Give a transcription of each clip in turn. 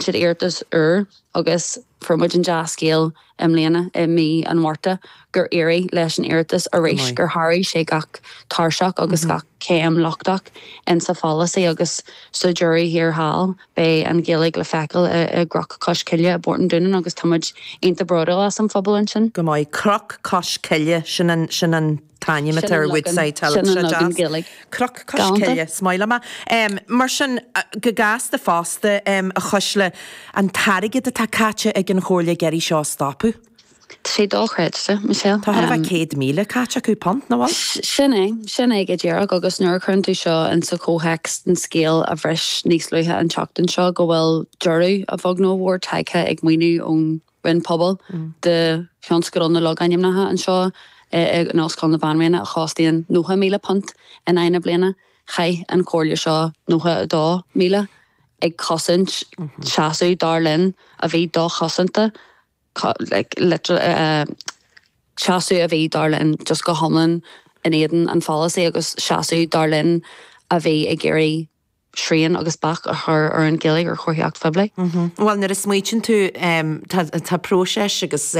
siad iarratas úr agus fuair muid an dea-scéal i mbliana, i mí an Mhárta, gur éirigh leis an iarratas arís, gur sháraigh sé gach tairseach agus gach céim lochtach insa pholasaí agus sa deireadh thiar thall. Beidh an Ghaeilge le feiceáil i gCnoc Cois Coille i bPort an Dúnáin agus tá muid iontach bródúil as an phobal ansin. Go maith. Cnoc Cois Coille, sin an t-ainm atá ar Woodside Hill as Gaeilge. Cnoc Cois Coille, is maith liom é. Mar sin, go gasta fosta, a Chuisle, an t-airgead atá caite ag an Chomhairle ag iarraidh seo a stopadh. Tá sé dochreidte, Michelle. Tá chóir a bheith céad míle caite acu punt, nach bhfuil? Sin é. Sin é go díreach. Agus nuair a chuireann tú seo insa chomhthéacs den scéal a bhris níos luaithe an tseachtain seo go bhfuil deireadh, a bheag nó a mhór, tagtha ag maoiniú ón Roinn Pobal do thionscadal na logainmneacha anseo in Ollscoil na Banríona a chostaíonn £90,000 in aghaidh na bliana. Chaith an Chomhairle seo £92,000 ag cosaint seasamh, dar linn, a bhí dochosanta, seasamh a bhí, dar linn, just go hiomlán in éadan an pholasaí agus seasamh, dar linn, a bhí ag iarraidh srian agus bac a chur ar an Ghaeilge ar chomharthaíocht phoiblí. Bhuel, nuair a smaoitíonn tú, tá próiseas agus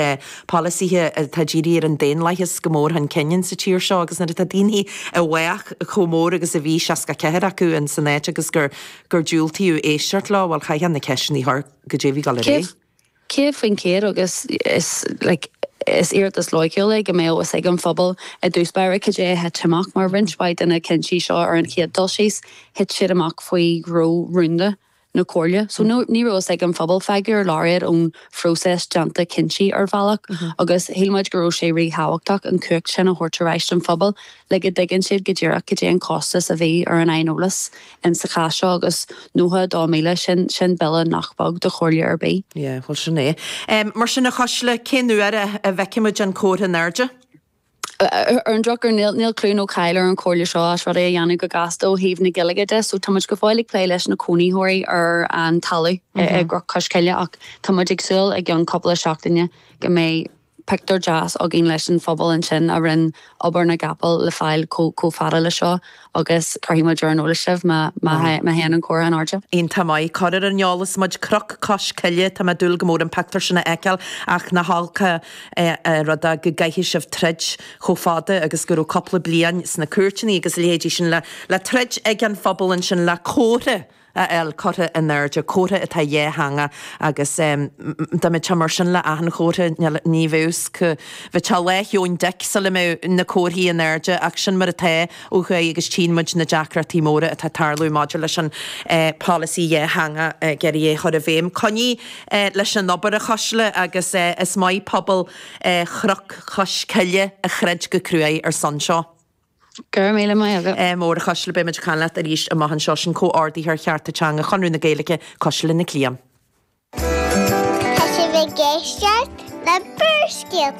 polasaithe atá dírithe ar an daonlathas go mór chun cinn insa tír seo agus nuair atá daoine i bhfách chomh mór agus a bhí, 64 acu, insan áit agus gur diúltaíodh éisteacht leo, bhuel, chaithfeá na ceisteanna a chur, cad é a bhí ag dul ar aghaidh? Céad faoin chéad agus is, like, is iarratas loighciúil é go mbeadh fhios ag an phobal i dtús báire cad é a thit amach mar roinnt mhaith de na cinntí seo ar an chéad dul síos thit siad amach faoi ghnó rúnda na comhairle so ní raibh fhios ag an phobal fágadh ar lár iad ón phróiseas déanta cinntí ar bhealach agus shíl muid go raibh sé ríthábhachtach an chumhacht sin a thabhairt ar ais don phobal le go dtuigeann siad go díreach cad é an costas a bhí ar an aineolas insa chás seo agus 92,000, sin, sin bille nach beag do chomhairle ar bith. Yeah, bhuel sin é. Em, mar sin a Chuisle, cén uair a, a bhfeicfimid an comhartha in airde? Ar an drochuair níl, níl clú nó cáil ar an chomhairle seo as rudaí a dhéanamh go gasta ó thaobh na Gaeilge de, so táimid go fóill ag plé leis na cónaitheoirí ar an talamh i gCnoc Cois Coille ach táimid ag súil i gceann cúpla seachtaine go mbeidh, Pictiúr deas againn leis an phobal ansin a rinn obair na gcapall le fáil chomh fada le seo agus cuirfidh muid ar an eolas sibh má théann an comhartha in airde. Iontach maith, cuir ar an eolas muid, Cnoc Cois Coille, tá mé ag dúil go mór an pictiúr sin a fheiceáil ach nach olc an rud é go gcaithfidh sibh troid chomh fada agus go raibh cúpla bliain sna cúirteanna agus a leithéidí sin le troid ag an phobal ansin le comhartha a fháil curtha in airde, comhartha atá dhátheangach agus dá mbeadh sé mar sin le achan chomhartha níl a fhios agam, bheadh sé Lá Sheoin Dic sula mbeadh na comharthaí in airde ach sin mar atá ó thuaidh agus tchíonn muid na deacrachtaí móra atá ag tarlú maidir leis an polasaí dhátheangach ag iarraidh é chur i bhféidhm. Coinnigh leis an obair a Chuisle agus is maith pobal Chnoc Chois Coille a throid go cruaidh ar son seo. Go raibh míle maith agat go mór a Chuisle, beimid ag caint leat arís amach anseo, sin comhordaitheoir chearta teanga Chonradh na Gaeilge, Cuisle Nic Liam. Tá sibh ag éisteacht le Barrscéalta.